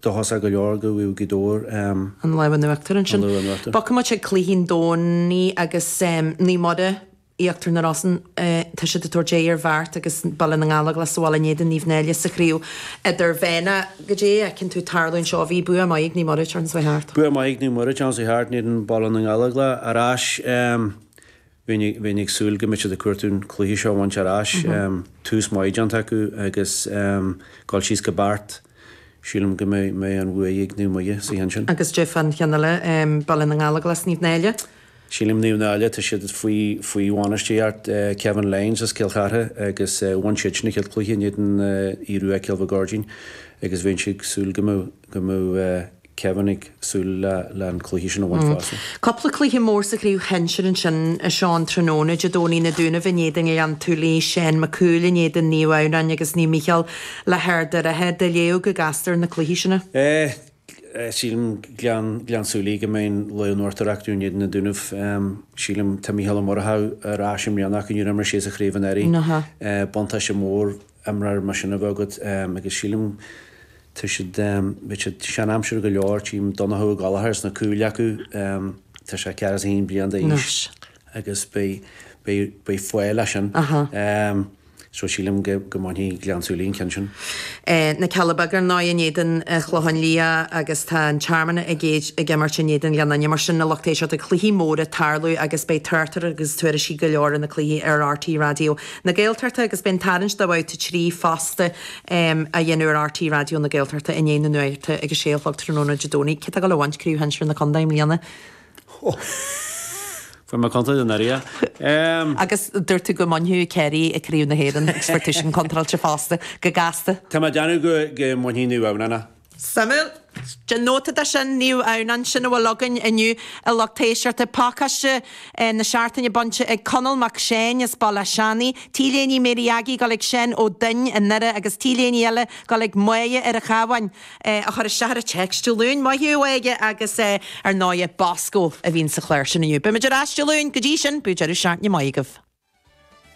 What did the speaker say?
Dóchasach go leor go bhfaighidh Gaoth Dobhair em. an lámh in uachtar ansin. Bogfaidh muid chuig cluichí an Domhnaigh agus em Naomh Muire Íochtar na Rosann eh tá siad ag tabhairt aghaidh ar Bheart agus Baile na nGallóglach sa bhaile in éadan Naomh Náille sa chraobh idirmheánach goidé a tchíonn tú tarlú anseo bhí bua maith ag Naomh Muire turn seo chuaigh thart. Bua maith ag Naomh Muire turn seo chuaigh thart in éadan Baile na nGallóglach ar ais em Bheinn ag súil go mbeadh siad ag cuartú an cluiche seo a bhaint ar ais. Tús maith déanta acu agus dul síos go Beart. Sílim go mbeidh an bhuaidh ag Naomh Muire sa cheann sin. Agus goidé fán cheann eile, Baile na nGallóglach is Naomh Náille? Sílim Naomh Náille, tá siad faoi bhainisteoireacht Kevin Lyons as Cill Chartha agus bhain siad sin a chéad cluiche in éadan Aodh Rua Cúil na gCuirridín agus bheinn ag súil go mbeadh Kevin ag súil le an cluiche sin a bhaint fosta. Cúpla cluiche mór sa chraobh shinsir ansin a Sheáin tráthnóna, Dé Domhnaigh, Na Dúnaibh in éadan Gleann tSúilí, Seán Mac Cumhaill in éadan Naomh Adhamhnáin agus Naomh Micheál le hArd an Rátha. Do léamh go gasta ar na cluichí sin. Sílim Gleann tSúilí go mbeidh an lámh in uachtar acu in éadan na Dúnaibh. Sílim tá Micheál Ó Murchadha ar ais i mbliana acu, níor imir sé sa chraobh anuraidh. Buntáiste mór imreoir mar sin a bheith agat agus sílim tá siad, bhí siad sean aimsire go leor, tchím Donnchadh Ó Gallchóir sna cúil acu, tá sé ceathracha is a haon bliain d'aois agus beidh faill as sin so sílim go mbainfidh Gleann tSúilí an ceann sin. Na Cealla Beaga ar ndóigh in éadan Chlocháin Liath agus tá an Tearmann ag imirt in éadan Ghleann Fhinne mar sin a lucht éisteachta cluichí móra tarlú agus beidh torthaí agus tuairiscí go leor ar na cluichí ar RTÉ Raidió na Gaeltachta agus beidh an tarraingt do Bhabhta 3 fosta á dhéanamh ar RTÉ Raidió na Gaeltachta i ndiaidh na nuachta ag a sé a chlog tráthnóna Dé Domhnaigh. Cé atá ag gabháil a bhaint craobh shinsir na Condae i mbliana? Fuair mé contráilte anuraidh é. Agus dúirt tú go mbainfeadh Kerry Craobh na hÉireann agus fuair tú sin contráilte fosta, go gasta. Tá mé ag déanamh go mbainfidh Naomh Adhamhnáin é. Suimiúil. Déan nóta de sin, Naomh Adhamhnáin. Sin a bhfuil againn inniu a lucht éisteachta, pacáiste na seachtaine bainte ag Conall Mac Seáin as Béal Átha Seanaidh, t-léine Mary Aggie ag gabháil chuig Seán Ó Duinn i nDoire agus t-léine eile ag gabháil chuig Moya ar an Chabháin. a chuir isteach ar an téacs Dé Luain, maith thú, a Mhoya, agus ar ndóighe, Bosco a bhíonn sa chlár sin inniu. Beimid ar ais Dé Luain, go dtí sin, bíodh deireadh seachtaine maith agaibh.